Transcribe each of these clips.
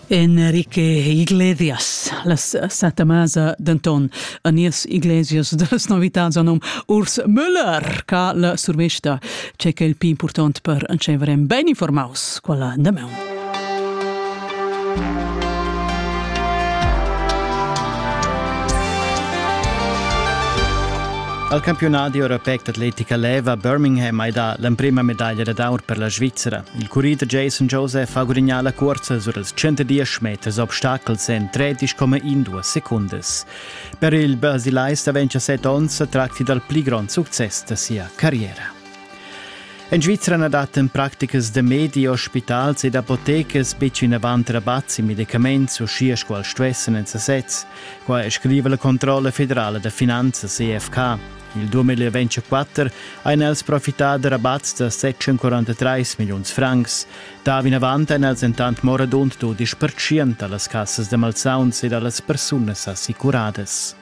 Enrique Iglesias, la santa masa denton a nies Iglesias dallas novitats anum Urs Müller, ca la survesta, c'è che il più important per encevere ben informaus quella da meun. Al campionat europeic d'atletica leva Birmingham hai dà l'emprima medaglia d'aur per la Svizzera. Il curri da Jason Joseph ha gudignà la cursa sur els 110 meters obstacels en 13,2 secundas. Per il brasilais da 27 onns tracti dal pli grond success da sia carriera. En Svizra na dattan practicas da medi, ospitals ed apotecas betg vinavant rabats e medicaments, uschia sco els stuessan en sasez. Qua scriva la Controlla federala da finanzas EFK. Il 2024 ein els profità da rabats da 743 milliuns francs. Da vinavant ein els entant morabund dudisch pertschient dallas cassas da malsauns e dallas persunas assicuradas.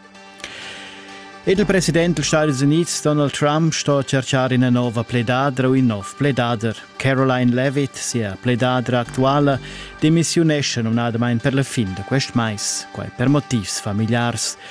Ed il president degli Stati Uniti Donald Trump sto cercar ina nova pledadra u in nov pledader. Caroline Levitt, sia pledadra actuala, demissiunesce numnadamain per la fin da quest mais, quai per motivs familiars.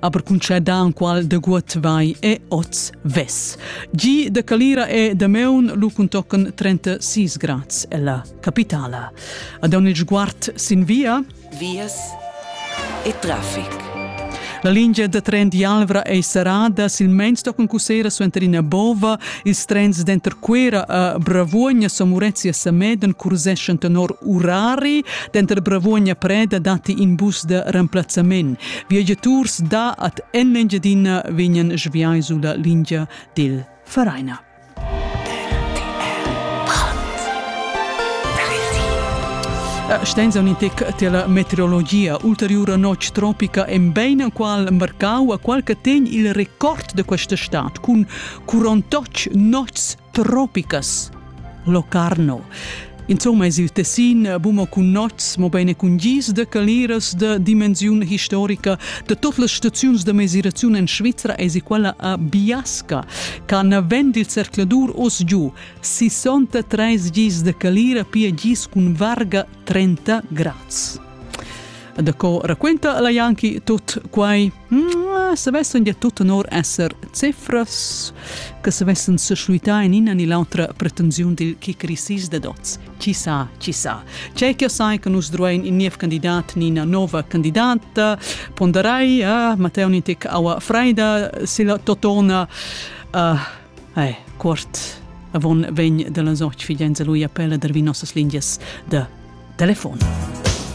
aber conceda qual de guot vai e oz ves. Gi de Calira e de Meun lu contocan 36 grads ella capitala. Ad on il sguard sin via. Vias e traffic. La lingia da tren d'Alvra ei serrada, silmeins tocan cussera suenter ina bova, ils trens denter Quera a Bravuogna, Somurezia e Sameden curseschan tenor urari, denter Bravuogna e Preda datti in bus de remplazzament. Viagiaturs da at en Engiadina vegnan sviai sulla lingia dil Vereina. Stenza un intec tela meteorologia. Ulteriura notg tropica en bein qual marcau a qual che tegn il record de questa stat cun 48 nots tropicas, locarno. Insomma es il tessin buma cun nots, mo bene cun gis de caliras de dimensiun historica de tot las staziuns de mesiraziun en Svizzera es quella a Biasca, can vend il cercladur os giu 63 gis de calira pia gis cun varga 30 grads. Da co raquenta la Janki tot quai? Mm, savessan dir tut tenor esser cifras che savessan seschluitar in ina ni l'autra pretensiun dil kickrisis da dots. Ci sa, ci sa. C'è che sai che nus druein in niev candidat ni ina nova candidata, ponderai eh, Matteo Nitic aua freida se la totona uh, eh, quart avon vegn dalla soc figenza lui appella der vi nossas lingias de telefon.